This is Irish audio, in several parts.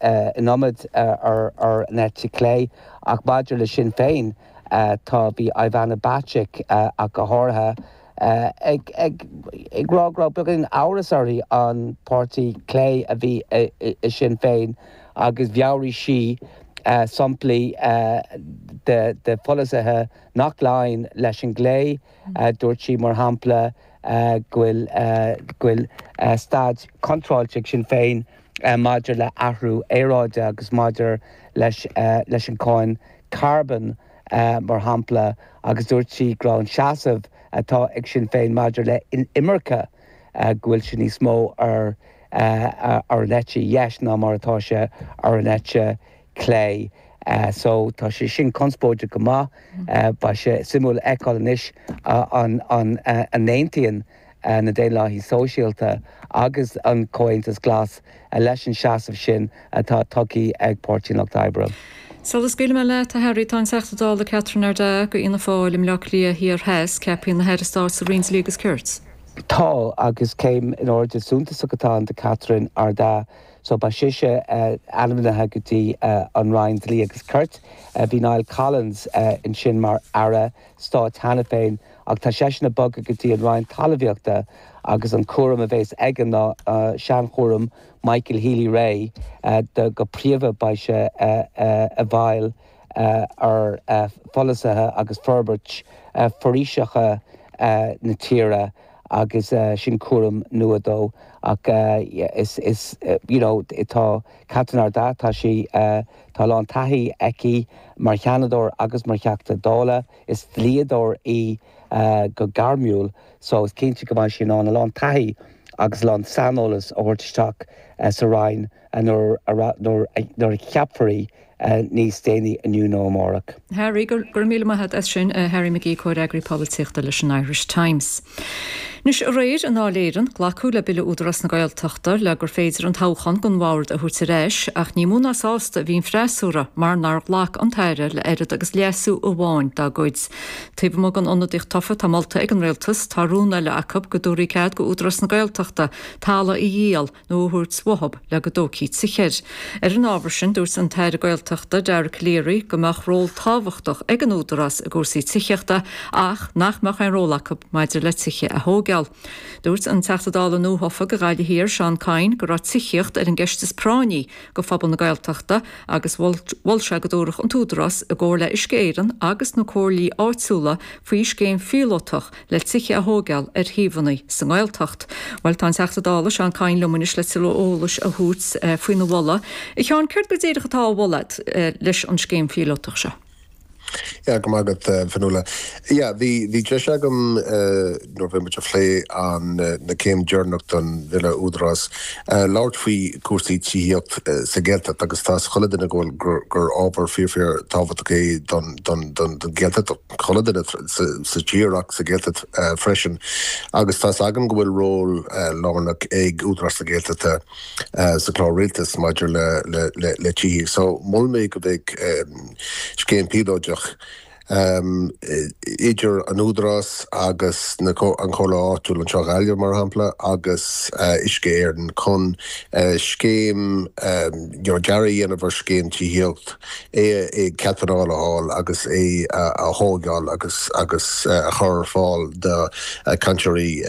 in iomad ar an eite chlé. Ach maidir le Sinn Féin, tá, bhí Ivana Bacik ach go háirithe ag rá go raibh beagán amhrais uirthi an páirtí clé a bhí i Sinn Féin agus mheabhraigh sí samplaí de pholasaithe nach laíonn leis an gclé. Dúirt sí, mar shampla, go bhfuil staid contráilte ag Sinn Féin, maidir le athrú aeráide agus maidir leis an cáin carbóin, mar shampla, agus dúirt sí go raibh an seasamh atá ag Sinn Féin maidir le imirce, go bhfuil sé níos mó ar an eite dheis ná mar atá sé ar an eite chlé. So tá sé sin conspóideach go maith. Beidh sé suimiúil a fheiceáil anois an n-aontaíonn. na Daonlathaithe Sóisialta agus an Comhaontas Glas leis an seasamh sin atá tógtha ag Páirtí an Lucht Oibre. Sula scaoilfidh mé leat, a Harry, tá an Teachta Dála Catherine Ardagh go Fhianna Fáil i mBleá Cliath Thiar Theas ceaptha ina hAire Stáit sa Roinn Dlí agus Cirt. Tá, agus céim in airde suntasach atá ann do Catherine Ardagh. So beidh sise ainmnithe go dtí an Roinn Dlí agus Cirt, bhí Niall Collins ansin mar Aire Stáit cheana féin, Ach tá seisean bogtha go dtí an Roinn Talmhaíochta agus an cúram a bhéas aige ná seanchúram Michael Healy Rae de go príomha beidh sé i bhfeighil ar pholasaithe agus forbairt foraoiseacha na tíre agus sin cúram nua dó ach is is you know tá Catherine Ardagh tá sí tá a lán taithí aici mar sheanadóir agus mar theachta dála. Is dlíodóir í go gairmiúil so is cinnte go mbeidh sí in ann a lán taithí agus a lán saineolas a thabhairt isteach sa Roinn nuair a cheapfar í níos déanaí inniu nó amárach. Harry, Go raibh míle maith agat as sin, a Harry McGee, Comhfhreagraí Polaitíochta leis an Irish Times. Anois aréir i nDáil Éireann, glacadh le Bille Údarás na Gaeltachta le gur féidir an toghchán don Bhord a thabhairt ar ais ach ní mó ná sásta a bhí an freasúra mar nár ghlac an tAire le oiread agus leasú amháin dá gcuid. Taobh amuigh den ionadaíocht thofa atá molta ag an Rialtas, tá rún eile acu go dtabharfaí cead go Údarás na Gaeltachta talamh a dhíol nó a thabhairt uathab le go dtógfaí tithe air. Ar an ábhar sin, dúirt an tAire Gaeltachta, Dara Calleary, go mbeadh ról tábhachtach ag an Údarás i gcúrsaí tithíochta ach nach mbeadh aon ról acu maidir le tithe a thógeáil. Dúirt an Teachta Dála nuathofa go Gaillimh Thiar, Seán Kyne, go raibh tithíocht ar an gceist is práinní go phobal na Gaeltachta agus mhol sé go dtabharfadh an tÚdarás, i gcomhar le Uisce Éireann agus na comhairlí áitiúla, faoi scéim phíolótach le tithe a thóigeáil ar shuíomhanna sa nGaeltacht. Bhuel, tá an Teachta Dála, Seán Kyne, liom anois le tuilleadh eolais a thabhairt faoina mholadh. A Sheáin, céard go díreach atá á mholadh agat leis an scéim phíolótach seo? Yeah, go raibh maith agat, Fionnuala. Yeah, bhí deis agam, nuair a bhí muid ag plé an, na céim dheireanach don Bhille Údarás, labhairt faoi cúrsaí tithíocht sa Ghaeltacht agus tá 's chuile duine go bhfuil, gur ábhar fíor fíor tábhachtach é don Ghaeltacht. chuile dhuine sa tír ach sa Ghaeltacht freisin agus tá's againn go bhfuil ról lárnach ag Údarás na Gaeltachta sa chlár Rialtais maidir le tithíocht so mhol mé go mbeidh scéim phíolóideach idir an Údarás agus an Chomhairle Áitiúil anseo Ghaillimh mar shampla agus Uisce Éireann chun scéim dearaidh a dhéanamh ar scéim tithíocht é, cead pleanála a fháil agus é a thóigeáil agus agus a chur ar fáil do chainteoirí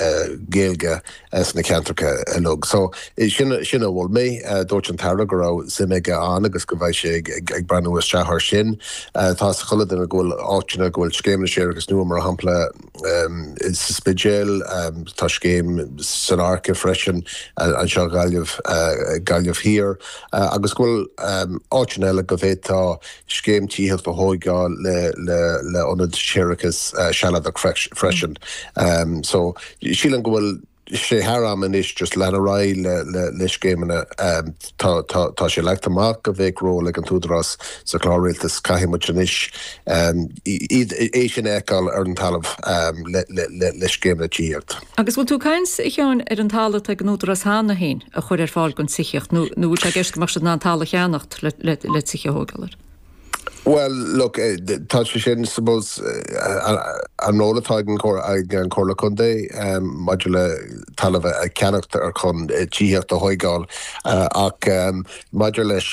Gaeilge sna ceantracha uilig. So sin, sin a mhol mé. Dúirt an tAire go raibh suim aige ann agus go bheidh sé ag ag breathnú isteach air sin. Tá 's ag chuile duine go bhfuil áiteanna go bhfuil scéimeanna séarachais nua, mar shampla, sa Spidéal. Tá scéim san Fhairche freisin anseo i Gaillimh Thiar agus go bhfuil áiteanna eile go bhféadfá scéim tithíocht a thógáil le hionad séarachais Sealadach freisin. So sílim go bhfuil. sé thar am anois just leanacht ar aghaidh le scéimeanna. Tá sé leagtha amach go bheadh ról ag an tÚdarás sa Chlár Rialtais. Caithfidh muid anois iad é sin a fheiceáil ar an talamh le scéimeanna tithíocht. Agus bhfuil tú caint, a Sheáin, ar an talamh atá ag an Údarás cheana féin a chur ar fáil don tithíocht nó bhfuil sé i gceist go mbeadh siad in ann talamh a cheannacht le tithe a thógáil air? Bhuel, look, tá sé sin, suppose, an ról atá ag an Chomhairle Contae maidir le talamh a cheannacht ar chun tithíocht a thóigeáil ach maidir leis,